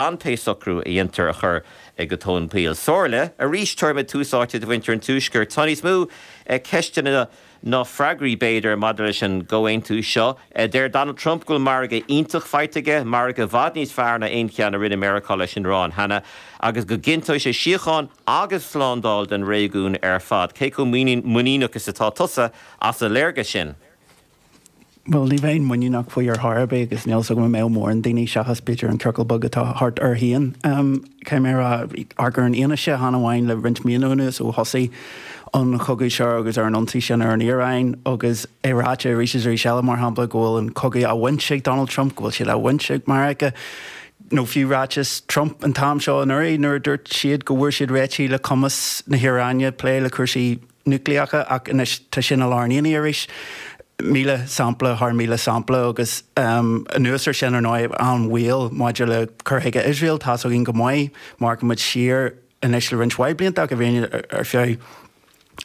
an t-socrú a dhéantar a chur go tóin poill. Somhairle, arís, tabharfaimid tús áite do mhuintir an Tuaiscirt. Tá níos mó ceisteanna ná freagraí, b'fhéidir, maidir leis an gcomhaontú seo. Deir Donald Trump go bhfuil margadh iontach faighte aige, margadh i bhfad níos fearr ná aon cheann a rinne Meiriceá leis an Iaráin cheana, agus go gcinnteoidh sé síocháin agus slándáil don réigiún ar fad. Cé chomh muiníneach is atá tusa as an léargas sin? Bhuel, ní bheinn muiníneach faoi ar chor ar bith agus níl 's agam an mbeadh mórán daoine, seachas b'fhéidir an ciorcal beag atá thart air féin, caithfidh mé a rá, amharc ar an fhianaise chan amháin le roinnt míonna anuas ó thosaigh an cogadh seo agus ar an ionsaí sin ar an Iaráin agus é ráite arís is arís eile, mar shampla, go bhfuil an cogadh bainte ag Donald Trump, go bhfuil siad á bhaint ag Meiriceá. Nó fiú ráiteas Trump an t-am seo anuraidh nuair a dúirt siad go bhfuair siad réitigh le cumas na hIaráine plé le cúrsaí núicléacha ach anois tá sin i lár an aonaigh arís, míle sampla thar mhíle sampla agus anuas air sin, ar ndóigh, an-bhaol maidir le cur chuige Iosrael. Tá's againn go maith, má amharcann muid siar anois le roinnt mhaith blianta ach i bhfírinne ar feadh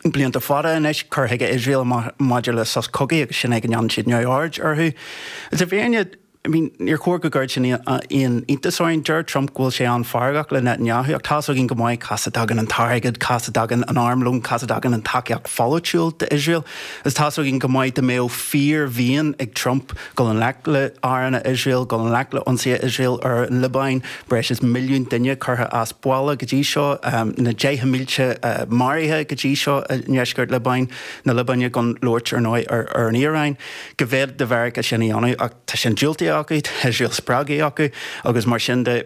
blianta fada anois, cur chuige Iosrael maidir le sos cogaidh agus sin é go ndéanann siad neamhaird orthu agus i bhfírinne, I mean, níor chóir go gcuirfeadh sin aon iontas orainn. Deir Trump go bhfuil sé an-fheargach le Netanyahu, ach tá's againn go maith cá as a dtagann an t-airgead, cá as a dtagann an armlón, cá as a dtagann an tacaíocht pholaitiúil d'Iosrael. Agus tá's againn go maith dá mbeadh fíor-mhian ag Trump dul i ngleic le háranna Iosrael, dul i ngleic le ionsaithe Iosrael ar an Liobáin, breis is milliún duine curtha as baile go dtí seo, na deicheanna mílte maraithe go dtí seo i ndeisceart Liobáin, na Liobáine, gan labhairt ar ndóigh ar an Iaráin. go bhféadfadh Meiriceá sin a dhéanamh. Ach tá sin diúltaithe acu, tá Iosrael spreagtha acu agus mar sin de,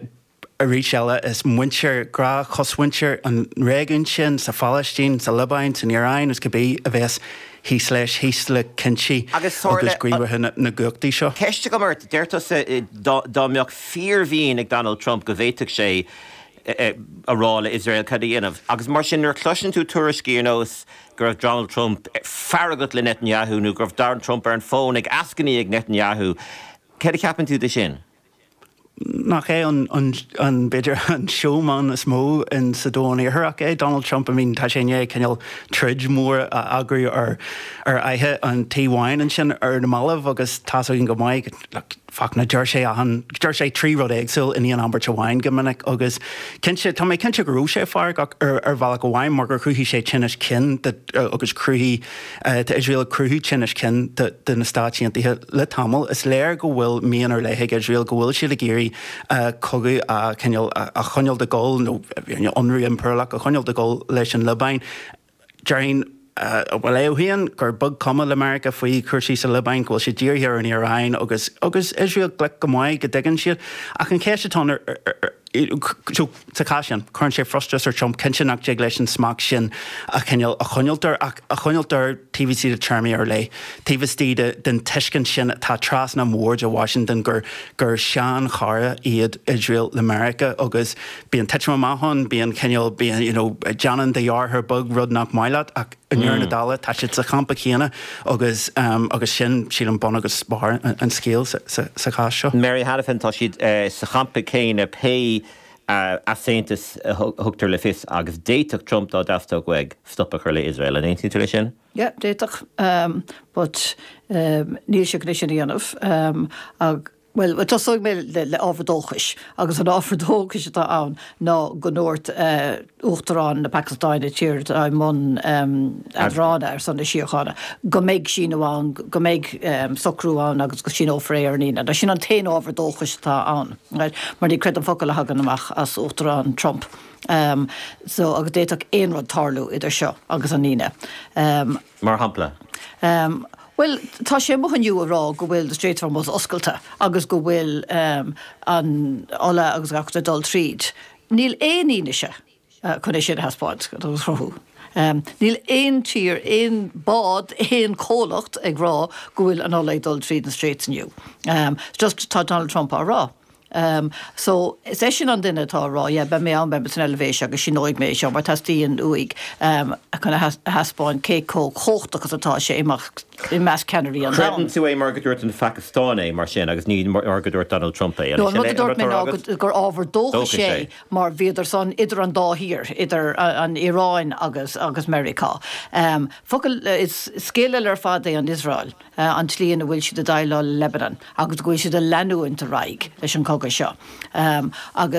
arís eile, is muintir gnáth-chosmhuintir an réigiúin sin, sa Phalaistín, sa Liobáin, san Iaráin, is cibé, a bheas thíos leis, thíos le cinntí agus gníomhartha na gcumhachtaí seo. Ceist agam ort, deir tusa dá mbeadh fíormhian ag Donald Trump go bhféadfadh sé a rá le Iosrael cad é a dhéanamh. Agus mar sin, nuair a chloiseann tú tuairiscí ar nós go raibh Donald Trump feargach le Netanyahu nó go raibh Donald Trump ar an bhfón ag eascainí ag Netanyahu, cad a cheapann tú de sin? Nach é an, b'fhéidir, an seóman is mó in sa domhan iartharach é Donald Trump? I mean, tá sé i ndiaidh cineál troid mhór a eagrú ar fhaiche an Tí Bháin ansin ar na mallaibh agus tá 's againn go maith, like, Fachtna, deir sé achan, deir sé trí rud éagsúil in aon abairt amháin go minic agus cinnte, tá mé cinnte go raibh sé feargach ar, ar bhealach amháin mar gur chruthaigh sé tinneas cinn de agus chruthaigh, tá Iosrael ag cruthú tinnis cinn de, de na Stáit Aontaithe le tamall. Is léir go bhfuil mian ar leith ag Iosrael, go bhfuil siad ag iarraidh cogadh a, cineál, a choinneáil ag gabháil nó, you know, ionradh impiriúlach a choinneáil ag gabháil leis an Liobáin. Déarfainn, bhuel, gur beag cuma le Meiriceá faoi chúrsaí sa Liobáin, go bhfuil siad dírithe anois ar an Iaráin agus agus Iosrael glic go maith, go dtuigeann siad. Ach an cheist atá ann, sa chás sin, cuireann sé frustrachas ar Trump, cinnte, nach dtig leis an smacht sin a choinneáil, a choinneáilt air, ach a choinneáilt air taobh istigh de téarmaí ar leith, taobh istigh den tuiscint sin atá trasna an bhoird i Washington gur gur seanchara iad Iosrael le Meiriceá agus bíonn titim amach ann, bíonn cineál, bíonn, déanann do dheartháir beag rud nach maith leat ach i ndeireadh na dála tá siad sa champa céanna agus, agus sin, sílim, bun agus barr an scéil sa chás seo. Mary Hanafin, tá siad sa champa céanna pé easaontas a thugtar le fios agus d'fhéadfadh Trump, dá dteastódh uaidh, stop a chur le Iosrael. An aontaíonn tú leis sin? Yeah, d'fhéadfadh but níl sé ag iarraidh sin a dhéanamh. Bhuel, tosóidh mé le ábhar dóchais, agus an ábhar dóchais atá ann ná go ndúirt Uachtarán na Pacastáine, tír atá i mbun eadrána ar son na síochána, go mbeidh síniú ann, go mbeidh socrú ann agus go síneofar é ar an Aoine. Sin an t-aon ábhar dóchais atá ann, mar ní chreidim aon fhocal a thagann amach as Uachtarán Trump. Em, so agus d'fhéadfadh aon rud tarlú idir seo agus an Aoine. Mar shampla. Bhuel, tá sé amuigh inniu a rá go bhfuil na Straits of Hormuz oscailte agus go bhfuil an ola agus gach rud ag dul tríd. Níl aon fhianaise chun é sin a thaispeáint nó a chruthú. Níl aon tír, aon bád, aon comhlacht ag rá go bhfuil an ola ag dul tríd na Straits inniu. Just tá Donald Trump á rá. Um so is eisean an duine atá a rá yeah beidh mé ann beidh mé san Eilvéis agus síneoidh mé é seo mar teastaíonn uaidh um chun a thaispeáint cé chomh chumhachtach is atá sé i measc i measc ceannairí an domhain. Creideann tú é mar go ndúirt an Phacastáin é mar sin agus ní mar go ndúirt Donald Trump é, an é sin an rud atá á rá agat? No, an rud a dúirt mé ná gur ábhar dóchais é mar bhíodar san idir an dá thír, idir an Iaráin agus agus Meiriceá. Um focal eh, is scéal eile ar fad é an Iosrael. an tslí ina bhfuil siad ag déileáil le Lebanon agus go bhfuil siad ag leanúint ar aghaidh leis an gcogadh seo agus.